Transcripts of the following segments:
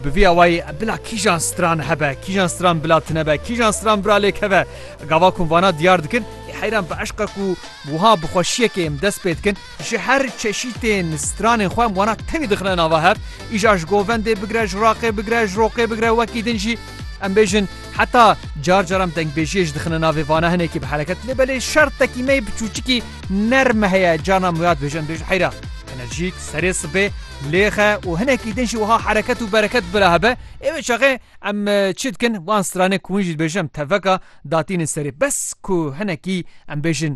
Bi vî awayî bila kîjan stran hebe, kîjan stran bila tune be, kîjan stran bira lê keve, gava ku vana diyar dikin, ê heyran bi eşqa ku wiha bi xweşiyekê em dest pê dikin, ji her çeşîtên stranên xwe em wana tevî dixine nava hev, îja ji govendê bigire, ji raqê bigire, ji roqê bigire, wekî din jî em bêjin heta car car em dengbêjiyê jî dixine navê vana hinekî bi hereket lê belê şertekî me yê bi çûçikî nerme heye, carna em wêyad bêjin em bêjin heyra enerjîk, serê sibê. Lêxe û hinekî din jî wiha hereket û bereket bila hebe, ê wê çaxê em çi dikin wan stranê ku hûn jî dibêjin em teveka datînin serê bes ku hinekî em bêjin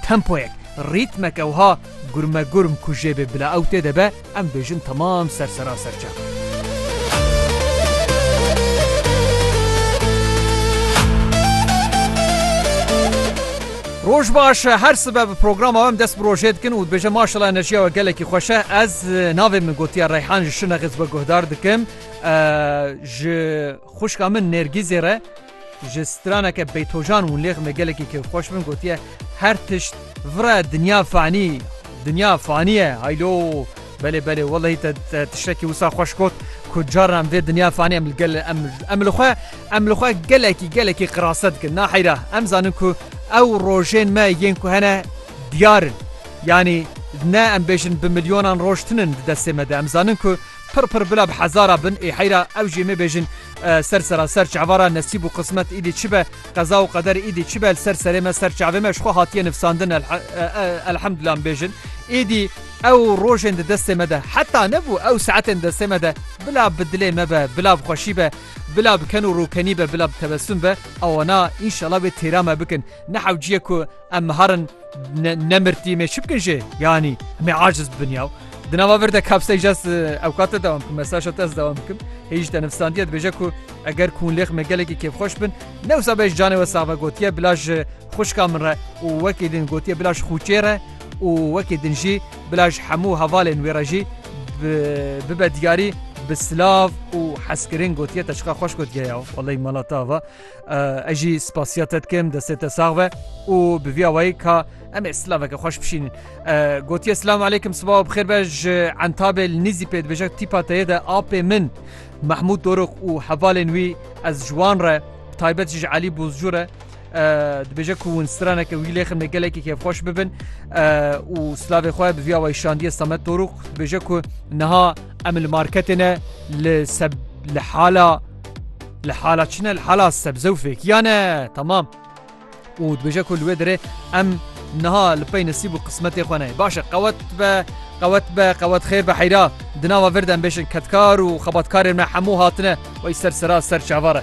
tempoyek, rîtmeke wiha gurmegurm ku jê bê bila ew tê de be em dibêjin temam ser sera serçe. Roj baş her sibe bi programa wem dest bi rojê dikin û dibêje maşela enerjiya we gelekî xweş e. Ez navê min gotiya Reyhan ji Şinex ez we guhdar dikim. Ji xuşka min Nergîzê re ji straneke Beytojan û lêx me gelekî kêf xweş bin gotiye her tişt vire dinya fanî dinya faniye haylo Belê belê wellehî te tiştekî wisa xweş got ku carna em vê dinya fanî em li gel em em li xwe em li xwe gelekî gelekî qirase dikin naheyra em zanin ku ew rojên me yên ku hene diyar in yanî ne em bêjin bi milyonan roj tinin di destê me de em zanin ku pir pir bila bi hezara bin ê heyra ew jê mêbêjin ser seraser çavara nesîb û qismet îdî çi be Qeza û qeder êdî çi be li ser serê me ser çavê me ji xwe hatiye nivsandin elhemdullah em bêjin. Êdî ew rojên di destê me de heta nebû ew saetên destê me de bila bi dilê me be bila bi xweşî be bila bi ken û rûkenî be bila bi tebesum be ewana înşela wê têra me bikin ne hewciyê ku Em miharin nemirtî me çi bikin jê yanî me aciz bibin yaw. Di nava vir de kapsey jes ewkate dewam bikim mesaja te ez dewam bikim. Hêj te nifsandiye dibêje ku eger kûnlêx me gelekî kêfxweş bin newsa bej canê we sava gotiye bila ji xwişka min re û wekî din gotiye bila ji xûçê re û wekî din jî bila ji hemû hevalên wê re jî bibe diyarî bi silav û hezkirin gotiye te çiqa xweş gotiye yaw wellay mala te ava. Ez jî spasiya te dikim destê te sax be û bi vî awayî ka em ê silaveke xweş bişînin. Gotiye silam aleykim sibawa bixêr be ji entabê li nîzî pê dibêje tîpa teyê de apê min Mehmûd Dorok û hevalên wî ez ji wan re taybet ji Elî Bozcû re dibêje ku hûn straneke wî lêxim ne gelekî kêfxweş bibin û silavê xwe bi vî awayî şandiye Samet Dorok dibêje ku niha em li marketê ne li li hala Li hala çi ne li hala sebze û fêkiya ne temam. û dibêje ku li wê derê em niha li pey nesîb û qismetê xwe ne baş e qewet be qewet be qewet xêr be heyra di nava vir de em bêjin kedkar û xebatkarên me hemû hatine wey ser sera ser çavar e.